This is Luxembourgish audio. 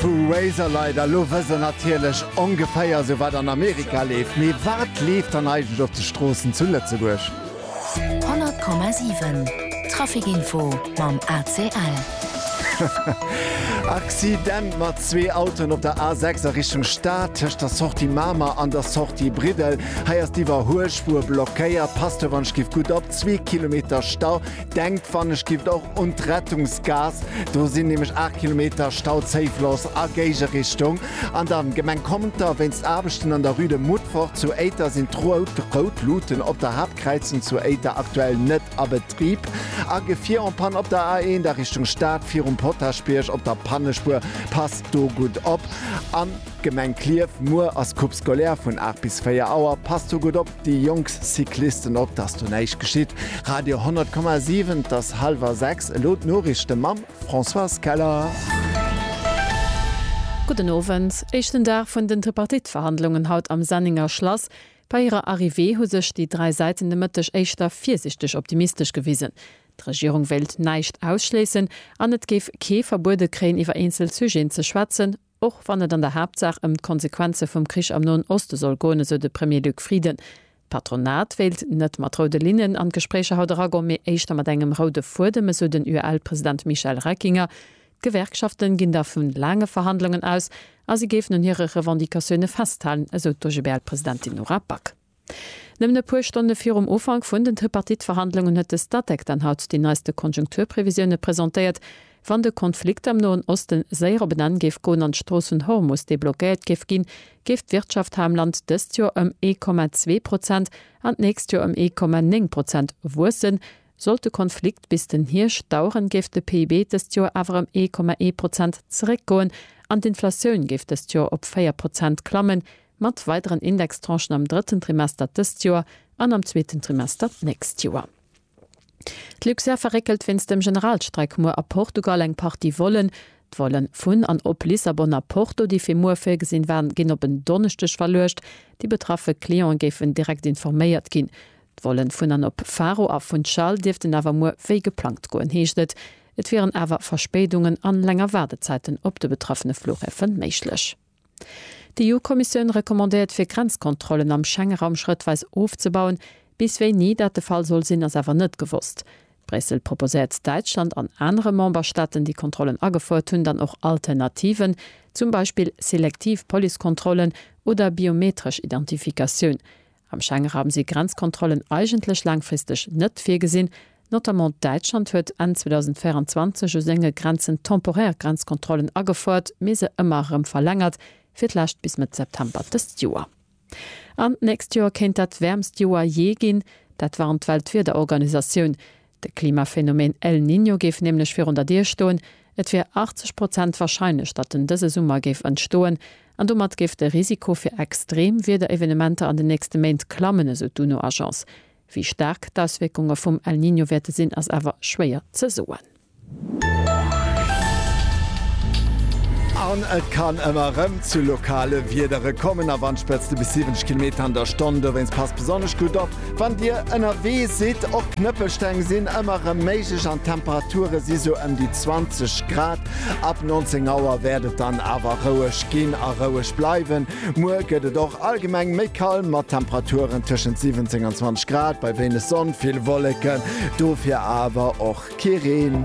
Vu Razorlight a lo wëss der natierlech ongeféier esou wat an Amerika leeft. Mee wat leeft dann eigentlech op de Stroossen zu Lëtzebuerg? 100,7 Trafic Info mam ACL. Accident mat zwee Autoen op der A6 a Richtung Stad, tëscht der Sortie Mamer an der Sortie Briddel. Hei ass d'Iwwerhuelspuer blockéiert. Passt dobäi, skift gutt op, zwee Kilometer Stau. Denkt wann ech gifft och un d'Rettungsgaass, do sinn nämlech 8 Kilometer Stau zéifloss a Géigerichtung. An dann Gemeng Conter, wéinst Aarbechten an der Rue de Moutfort zu Éiter sinn d'rout rout Luuten op der Haaptkräizung zu Éiter aktuell net a Betrib. A Gefier en Panne op der A1 a Richtung Stad virum Potaschbierg op der Pannespuer, passt do gutt op. An Gemeng Klierf, muer ass Coupe scolaire vun 8 bis 4 Auer, passt do gutt op. Déi jonk Cyclisten op, dass do näischt geschitt. Radio 100,7 Et ass hallwer 6, elo d'Noriichte mam Françoise Keller. Gudden Owend. Éischten Dag vun den Tripartite-Verhandlungen haut am Sennenger Schlass. Bei hirer Arrivée hu sech déi dräi Säiten de Mëtteg éischter virsichteg optimistesch gewisen. D'Regierung wéilt näischt ausschléissen an et géif kee verbuede kréien iwwer eenzel Sujeten ze schwätzen, Och wann et an der Haaptsaach ëm d'Konsequenze vum Krich am Noen Oste soll goen, esou de Premier Luc Frieden. D'Patronat wéilt net mat roude Linnen an d'Gespréicher haut eragoen, mee éischter mat engem roude Fuedem, esou den UEL-President Michel Reckinger. D'Gewerkschaften ginn da vu laange Verhandlungen aus a si géifen un hire Revendicatioune festhalen, esou d'OGBL-Presidentin Nora Back. Nëmmen e puer Stonne virum Ufank vun den Tripartite-Verhandlungen huet de Statec dann haut déi neiste Konjunkturprevisioune presentéiert. Wann de Konflikt am Noen Oste séier op en Enn géif goen an d'Strooss vun Hormus deblockéiert géif ginn, géif d'Wirtschaft hei am Land dëst Joer ëm ee Komma zwee Prozent an d'nächst Joer ëm ee Komma néng Prozent wuessen. Sollt de Konflikt bis den Hierscht daueren, géif de PIB dëst Joer awer ëm ee Komma ee Prozent zeréckgoen an d'Inflatioun géif dëst Joer op véier Prozent klammen, Mat weideren Indextranchen am drëtten Trimester dëst Joer an am zweeten Trimester d'nächst Joer. D'Luxair verréckelt wéinst dem Generalstreik muer a Portugal eng Partie Vollen. D'Vollen vun an op Lissabon a Porto, déi fir muer virgesinn waren, ginn op en Donneschdeg verluecht. Déi betraffe Clientë géifen direkt informéiert ginn. D'Vollen vun an op Faro a Funchal dierften awer muer wéi geplangt goen, heescht et. Et wieren awer Verspéidungen an länger Waardezäiten op de betraffene Flughäfe méiglech. D'EU-Kommissioun recommandéiert fir Grenzkontrollen am Schengeraum schrëttweis ofzebauen. Bis wéini dat de Fall soll sinn, ass awer net gewosst. Bréissel proposéiert Däitschland an anere Memberstaaten, déi Kontrollen agefouert hunn, dann och Alternativen, zum Beispill selektiv Policekontrollen oder biometresch Identifikatioun. Am Schengenraum si Grenzkontrollen eigentlech laangfristeg net virgesinn. Notamment Däitschland huet Enn 2024 u senge Grenzen temporär Grenzkontrollen agefouert, mee se ëmmer erëm verlängert, fir d'lescht bis Mëtt September dëst Joer. An d'nächst Joer kéint dat wäermst Joer jee ginn. Dat warnt d'Weltwiederorganisatioun. De Klimaphänomen El Niño géif nämlech virun der Dier stoen, et wier 80 Prozent warscheinlech, datt en dëse Summer géif entstoen, an domat géif de Risiko fir extreem Wiederevenementer an den nächste Méint klammen, esou d'UNO-Agence. Wéi staark d'Auswierkunge vum El Niño wäerte sinn, ass awer schwéier ze soen. An et kann ëmmer erëm zu lokale Wiedere kommen a Wandspëtzte bis 70 Kilometer an der Stonn. Dowéinst passt besonnesch gutt op, wann Dir ënnerwee sidd. Och Knëppelsteng sinn ëmmer erëm méiglech an d'Temperature si sou ëm déi 20 Grad. Ab 19 Auer wäert et dann awer roueg ginn a roueg bleiwen. Muer gëtt et och allgemeng méi kal mat Temperaturen tëschent 17 an 20 Grad, bei wéineg Sonn, vill Wolleken, dofir awer och kee Reen.